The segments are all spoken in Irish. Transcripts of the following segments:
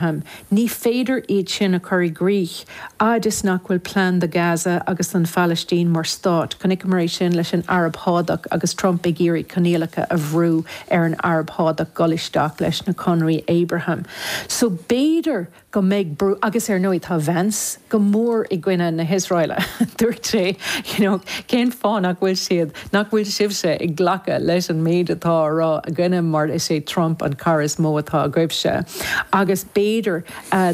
Ní féidir iad sin a chur i gcrích fhad is nach bhfuil plean do Gaza agus don Phalaistín mar stát. Chonaiceamar é sin leis an Araib Shádach agus Trump ag iarraidh coinníollacha a bhrú ar an Araib Shádach dul isteach leis na conraí Abraham. So b'fhéidir go mbeidh brú ann, agus ar ndóigh tá Vance go mór i gcoinne na hIosráile, dúirt sé, you know, cén fáth nach bhfuil siad? Nach bhfuil sibhse ag glacadh leis an méid atá á rá againne mar is é Trump an cara is mó atá agaibhse agus b'fhéidir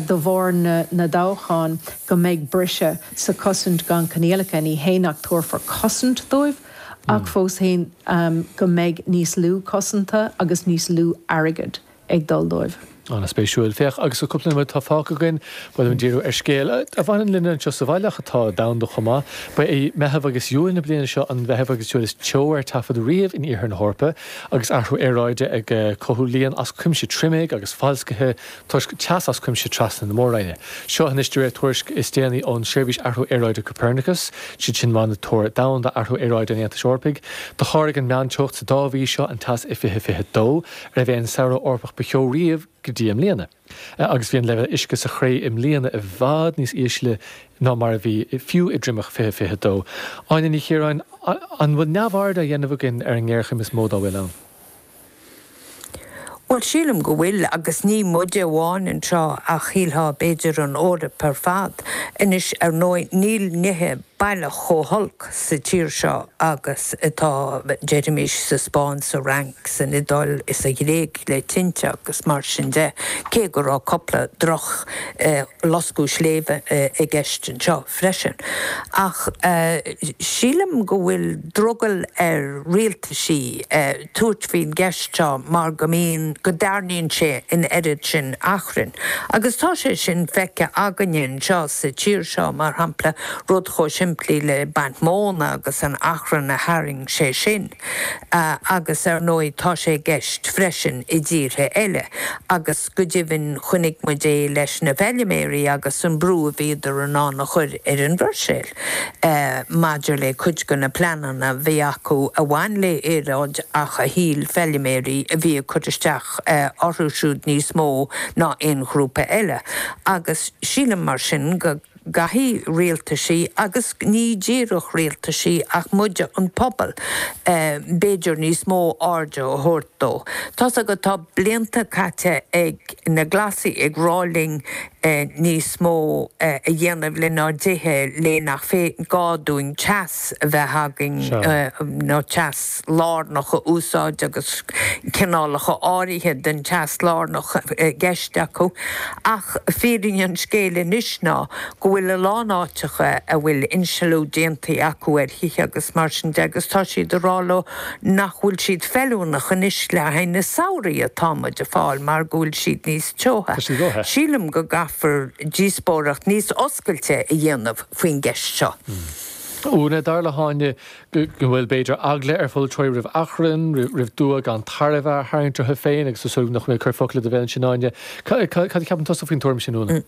de bharr na dtoghchán go mbeidh briseadh sa gcosaint gan coinníollacha, ní hé nach dtabharfar cosaint dóibh ach fós féin go mbeidh níos lú cosanta agus níos lú airgid. ag dul dóibh. An-spéisiúil. Féach, agus an cúpla nóiméad atá fágtha againn ba mhaith liom díriú ar scéal a bhaineann linne anseo sa bhaile ach atá domhanda chomh maith, ba é Meitheamh agus Iúil na bliana seo an Meitheamh agus Iúil is teo ar taifead riamh in iarthar na hEorpa agus athrú aeráide ag cothú líon as cuimse triomaigh agus foloiscthe toisc teas as cuimse trasna na mór-roinne. Seo anois de réir na tuairisce is déanaí ón Seirbhís Athrú Aeráide Copernicus, siad sin Monatóir Domhanda Athrú Aeráide an Aontais Eorpaigh. Do sháraigh an meánteocht sa dá mhí seo an teas i 2022. arbh é an Samhradh Eorpach ba theo riamh go dtí i mbliana agus bhí an leibhéal uisce sa chré i mbliana i bhfad níos ísle ná mar a bhí fiú i dtriomach 2022. Áine Ní Chiaráin, An bhfuil neamhaird á dhéanamh againn ar an ngéarchéim is mó dá bhfuil ann? Bhuel, sílim go bhfuil, agus ní muide amháin anseo ach sílim b'fhéidir an Eoraip ar fad. Anois, ar ndóigh, níl nithe baileach chomh holc sa tír seo agus atá siad, deirimis, sa Spáinn, sa Fhrainc, san Iodáil is sa Ghréig le tinte agus mar sin de, cé go raibh cupla droch loscadh sléibhe i gceist anseo freisin. Ach sílim go bhfuil drogall ar rialtais aghaidh. a thabhairt ar an gceist seo mar go mbíonn, go dtarraingíonn sé an oiread sin achrainn. Agus tá sé sin feicthe againne anseo sa tír seo, mar shampla, rud chomh simplí le baint móna agus an t-achrann a tharraing sé sin. Agus, ar ndóigh, tá sé i gceist freisin i dtíortha eile. Agus. Go deimhin chonaic muid é leis na feiliméaraí agus an brú a bhíodar in ann a chur ar an Bhruiséil maidir le cuid de na pleananna a bhí acu a bhain le aeráid ach a shíl feiliméaraí a bhí ag cur isteach orthu siúd níos mó ná aon ghrúpa eile agus sílim mar sin go gcaithfidh rialtaisí, agus ní díreach rialtaisí ach muide an pobal, b'fhéidir, níos mó airde a thabhairt dó. Tá's agat, tá blianta caite ag na Glasaigh ag rá linn níos mó a dhéanamh lenár dtithe le nach gá dúinn teas a bheith againn, nó teas. lárnach a úsáid agus cineálacha áirithe den teas lárnach i gceist acu, ach fírinne an scéil anois ná go bhfuil a lán áiteacha a bhfuil insealú déanta acu ar thithe agus mar sin de agus tá siad ag rá leo nach bhfuil siad feiliúnach anois le haghaidh na samhraí atá muid ag fáil mar go bhfuil siad níos teotha. Sílim go gcaithfear díospóireacht níos oscailte a dhéanamh faoin gceist seo. Úna, Dar le hÁine go bhfuil, b'fhéidir, eagla ar pholaiteoirí roimh achrann, roimh dua gan tairbhe a tharraingt orthu féin agus is dóigh nach mé ag cur focail i do bhéal ansin, Áine. Cad a cheapann tusa faoin tuairim sin, Úna?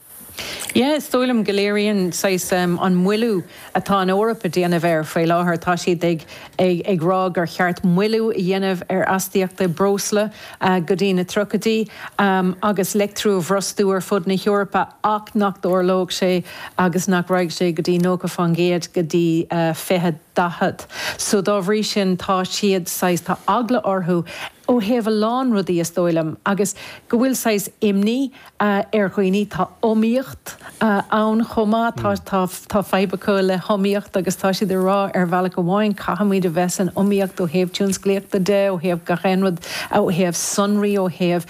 Yeah, is dóigh liom go léiríonn, saghas, an moilliú atá an Eoraip a déanamh air faoi láthair, tá siad ag rá gur cheart moilliú a dhéanamh ar astaíochtaí breosla, go dtí na tríochaidí agus leictriú a bhrostú ar fud na hEorpa ach nach dtarlódh sé agus nach raghaidh sé go dtí 90 fán gcéad go dtí 2040. So dá bhrí sin tá siad saghas, tá eagla orthu ó thaobh a lán rudaí is dóigh liom agus go bhfuil saghas imní, ar dhaoine. Tá iomaíocht ann chomh maith. Tá, tá, tá fadhb acu le hiomaíocht agus tá siad ag rá, ar bhealach amháin, caithfimid a bheith san iomaíocht ó thaobh tionsclaíochta de, ó thaobh gach aon rud, ó thaobh sonraí, ó thaobh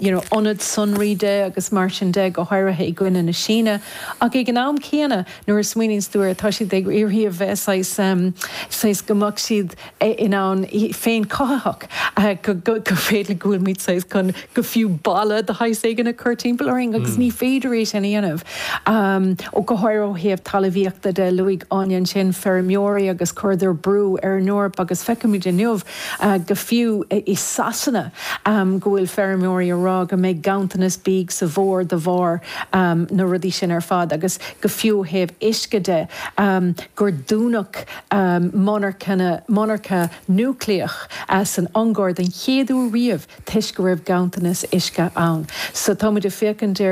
you know ionad sonraí de agus mar sin de, go háirithe i gcoinne na Síne. Ach ag an am céanna, nuair a smaoiníonns tú air, tá siad ag iarraidh a bheith saghas, saghas go mbeadh siad, in ann féinchothaitheach, go féidir go bhfuil muid saghas chun go fiú balla de shaghas éigin a chur timpeall orainn agus ní féidir é sin a dhéanamh. Go háirithe ó thaobh talamhaíochta de, luaigh Áine ansin feirmeoirí agus chuireadar brú ar an Eoraip agus feicimid inniu go fiú i Sasana go bhfuil feirmeoirí a rá go mbeidh ganntanas bídh sa bhfómhar de bharr na rudaí sin ar fad agus go fiú ó thaobh uisce de gur dúnadh monarchana, monarcha núicléach, san Ungáir den chéad uair riamh toisc go raibh ganntanas uisce ann. So tá muid ag féachaint ar.